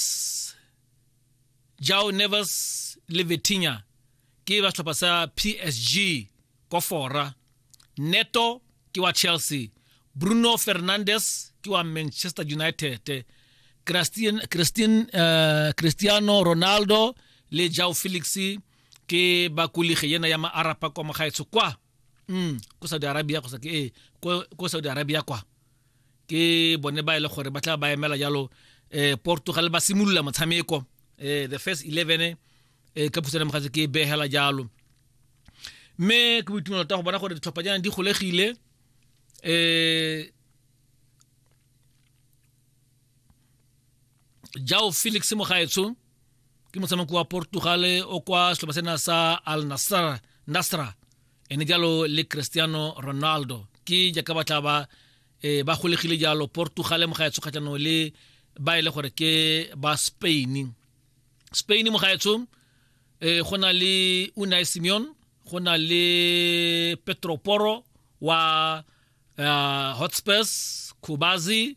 Neves Jao Neves le Vitinha ke ba setlhopha sa PSG kwa fora Neto ke wa Chelsea Bruno Fernandes ke wa Manchester United Christian, Christian, uh, Cristiano Ronaldo le Jao Felix ke ba kulige yena ya maarapa kwa mogaetsho kwa mm, ko Saudi Arabia go sa ke eh, ko, ko Saudi Arabia kwa ke bone ba e le gore ba tla ba emela jalo eh Portugal ba simolola motshameko eh the first 11 eh ka phusana mogatse ke behela jalo mme ke boitumelo ta go bona gore ditlhopha jana di golegile eh jao felix mogaetsho ke motshameko wa portugal o kwa setlhopa sena sa al nasra, nasra. ene jalo le cristiano ronaldo ke jaaka ba tla ba e ba golegile jalo portugal mogaetsho kgatlhanong le ba e le gore ke ba spain spain mogaetsho e go na le unai simeon go na le petro poro wa uh, hotspurs kubazi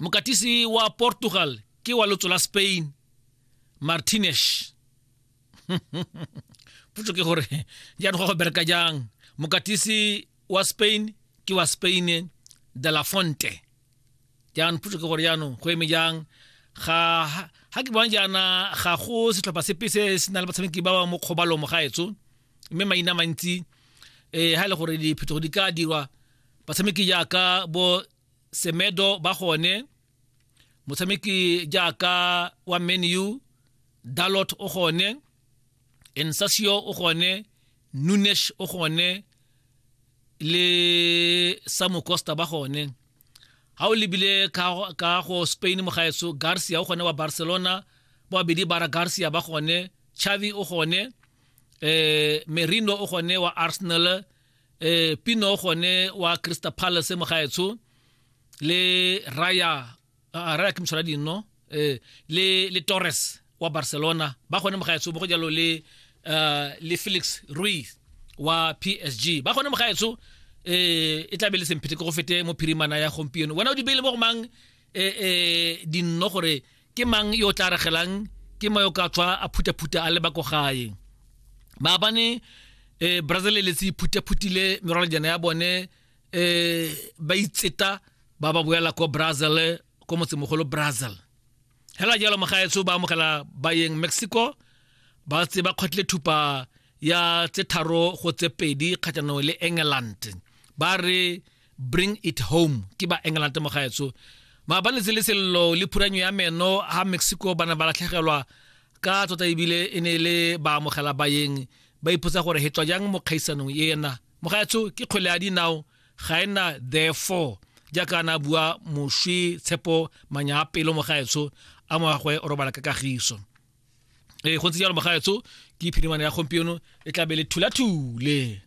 mokatisi wa portugal ke wa lotso la spain martinez potso ke gore jaanong go bereka jang mokatisi wa spain ke wa spain de la fonte jaanong potso ke gore jaanong go eme jang ga ga ke bona jaana ga go setlhopha sepe se se na le batshameki ba ba mo kgobalomo ga etso mme maina mantsi um ga e le gore diphetogo di ka dirwa batshameki jaaka bo semedo ba gone motshameki jaaka wa menu dalot o gone ensasio o gone nunesh o gone le samu costa ba gone ha o lebile ka go spain mogaetso garcia o gone wa barcelona ba babedi bara garcia ba gone chavi o gone eh merino o gone wa arsenal eh pino gone wa Crystal Palace mo gaetsho le Raya uh, Raya ke mshora dino eh le le Torres wa Barcelona ba gone mo gaetsho bo go jalo le uh, le Felix Ruiz wa PSG ba gone mo gaetsho eh e tlabe le semphete go fete mo phirimana ya gompieno wena o di beile mo go mang eh eh dinno gore ke mang yo o tla regelang ke mo yo ka tswa a phutaphuta a leba ko gae maabane eh, brazil e letsi phutaphutile merwalanjana ya bone eh, ba itseta ba ba boela ko brazil ko motsemogolo brazil hela jalo mogaetso ba amogela bayeng mexico ba tse ba kgotlile thupa ya tse tharo go tse pedi kgatlhanong le england ba re bring it home ke ba england mo gaetso maabaletse le sello le phuranyo ya meno ha mexico ba ne ba latlhegelwa ka tota ebile e ne le ba amogela bayeng ba ipotsa gore he tswa jang mo kgaisanong ena mo gaetso ke kgwele ya dinao ga e na therefore jaaka na bua moswi tshepo manya a pelo mo gaetso a moagwe o robala ka kagiso ee go ntse jalo mo gaetso ke phirimane ya gompieno e tlabe le thulathule